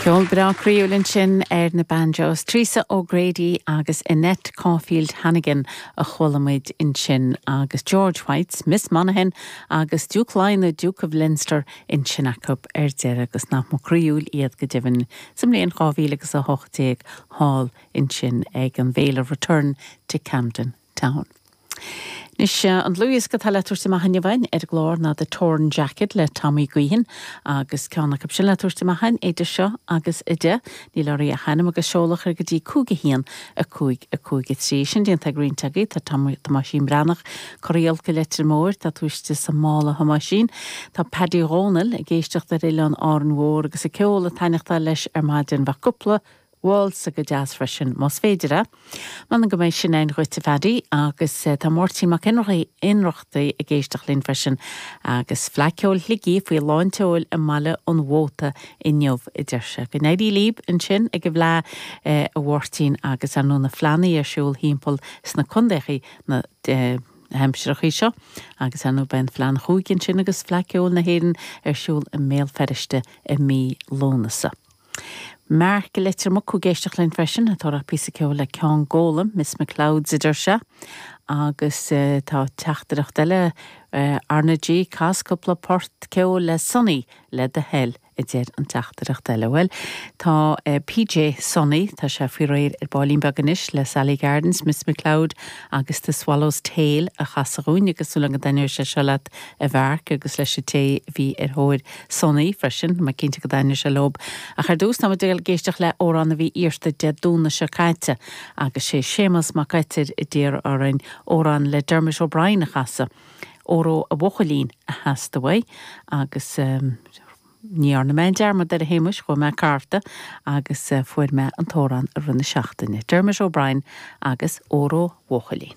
Ceol breá croíúil ansin ar na banjos, Teresa O'Grady agus Annette Caulfield Hannigan a chuala muid ansin agus George White's Miss Monaghan agus Diúc Laighean The Duke of Leinster ansin acu ar deireadh agus nach ba croíúil iad go deimhin sa mbliain dhá mhíle agus a hocht déag thall ansin ag an bhféile Return to Camden. Town. Anois an dlúthdhiosca atá le tabhairt amach inniu a'inn ar an gclár ná The Torn Jacket le Tommy Guihen agus ceann acu sin le tabhairt amach a'inn idir seo agus a deich, níl oraibh ach ainm agus seoladh a chur go dtí 5 1 5 5 3. Sin déanta ag roinnt agaibh tá Tomáisín Breathnach, Cora Bhuí i Leitir Móir, tá tú istigh sa mála a Thomáisín, tá Paddy Dhomhnaill ag éisteacht ar oileán Árainn Mhór agus an ceol ag taitneachtáil leis ar maidin bheadh cúpla Waltz go deas freisin, más féidir é. M'anam go mbeidh sin ann dhuit a Phaddy agus tá Máirtín Mac Ionnrach Ionnrachtaigh ag éisteacht linn freisin agus Fleadh Ceoil Shligigh faoi lán tseoil i mBaile an Mhóta inniu a deir sé. Go n-éirí líb ansin ag an bhFleadh a Mháirtín agus ar ndóigh na fleánnaí ar siúl thimpeall sna condaethaí na haimsireachaí seo agus ar ndóigh beidh Fleadh an Chúige ansin agus Fleadh Ceoil na hÉireann ar siúl i mBéal Feirste i mí Lúnasa. Mark, Leitir Mucú ag éisteacht linn freisin, ag iarraidh píosa ceoil le Ceann Gólaim, Miss McLeod's a deir sé. Agus tá teachtaireacht eile ar ndóigh, Cas cúpla port ceoil le Sonny le do thoil, a deir an teachtaireacht eile. Bhuel, tá PJ Sonny, tá sé faoi réir ar ballín beag anois le Sally Gardens, Miss McLeod agus The Swallow's Tail a chasadh dhúinn agus tá súil agam go dtaitneoidh sé seo leat a Mhark agus leis an té a bhí ar thóir Sonny freisin, mé cinnte go dtaitneoidh sé leo. Ach ar dtús, tá muid ag goil ag éisteacht le amhrán a bhí iarrta Dé Domhnaigh seo caite agus sé Séamas Mac Oitir a d'iarr orainn amhrán le Dermot O'Brien a chasadh. Óró Mo Bhuachaillín a theastaigh uaidh agus ní dhearna mé aon dearmad air a Shéamuis, chuaigh mé ag cartadh agus fuair mé an t-amhrán i rith na seachtaine. Dermot O'Brien agus Óró Mo Bhuachaillín.